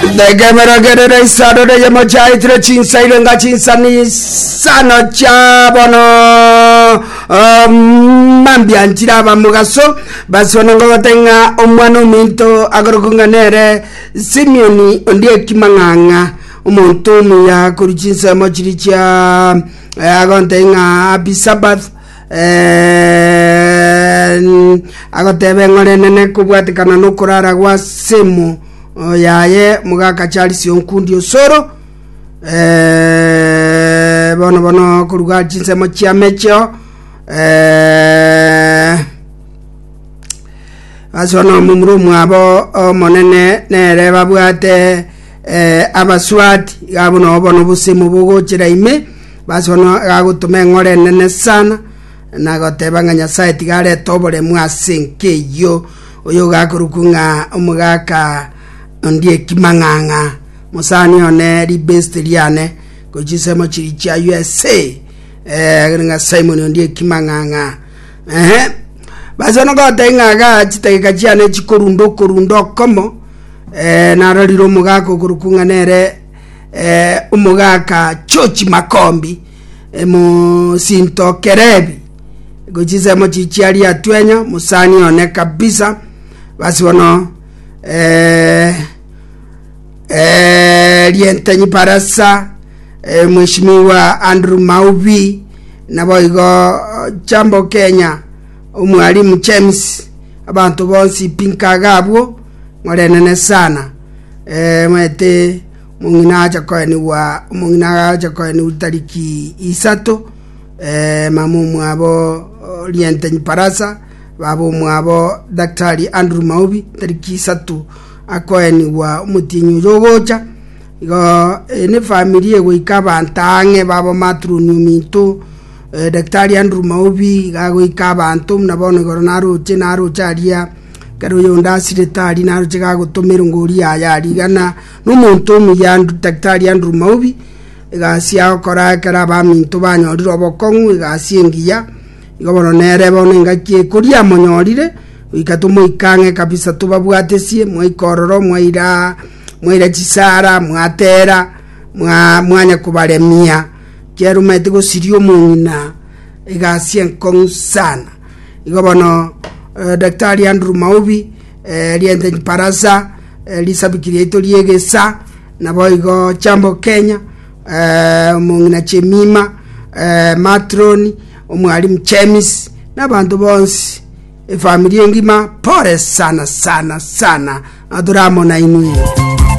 Nekeberogerere isano neyemo chiaetire chinsaire nga chinsani isano chia bono ah, mambia nchire abamogaso basibane ngogote ng'a omwana ominto akorokwa ng'a nere Simioni ondi ekimang'ang'a omonto omuya korwa chinsemo chiri chia eh, agontei ng'a Happy Sabbath Agotebe ng'a orenene kobwatekana nokorara gwa semo yaye mogaka Charles Onkundi Osoro eh, bono bono koruga chinsemo chia mecheo eh, ase bono omomura omwabo omonene nere babwate Eh, abaswaati, iga buna obona obosemo bogochera ime, baswana agagotoma eng'ora enene sana, na agoteba ng'a Nyasae tiga arete oboremu ase enka eyio, oyo ogakorokwa ng'a omogaka ondi ekimang'ang'a, mosani one ribesti riane, gochi chisemo chiri chia USA, eh, ng'a Simon ondi ekimang'ang'a. Ehe, baswana goteba ng'a iga chitageka chiane chikorunda okorunda okomo, narorire omogaka okorokwa ng'a nere eh, omogaka Chochi Makombi eh, mosinto Kerebi gochinsemo chichiari atwenya mosani one kabisa basi bono eh, eh, rientenyi barasa eh, mheshimiwa Andrew Maubi naboigo eh, Jambo Kenya Omwalimu James, abanto bonsi pinkaga abwo, morenene sana. Ee, maete omong'ina acha koenigwa, omong'ina acha koenigwa tariki isato, ee, mama omwabo Rientenyi Barasa, baba omwabo Daktari Andrew Maubi, tariki isato akoenigwa omotienyi oyo ogocha. Igo ee, nefamiri egoika abanto ang'e baba maturoni ominto, Daktari Andrew Maubi iga agoika abanto buna bono igoro naroche, naroche aria ekero oyonde asirete aria, naroche iga agotoma erongori yaye aria igana nomonto omuya Daktari Andrew Maubi egasi agokora ekero abaminto banyorire obokong'u egasi engiya, igo bono nere bono engaki ekoria amonyorire, goika tomoika ang'e kabisa tobabwatesie, mwaika ororo mwairaa mwaira chisara, mwatera, mwa mwanya kobaremia. chiarumeti gosiria omong'ina egasi enkong'u sana. Igo bono eh, Daktari Andrew Maubi eh, riente Barasa eh, risabiki riaito riegesa nabo igo Chambo Kenya eh, omong'ina Chemima eh, Matroni omwalimu Chemis n'abanto bonsi efamiri engima pore sana sana sana na toramonainwe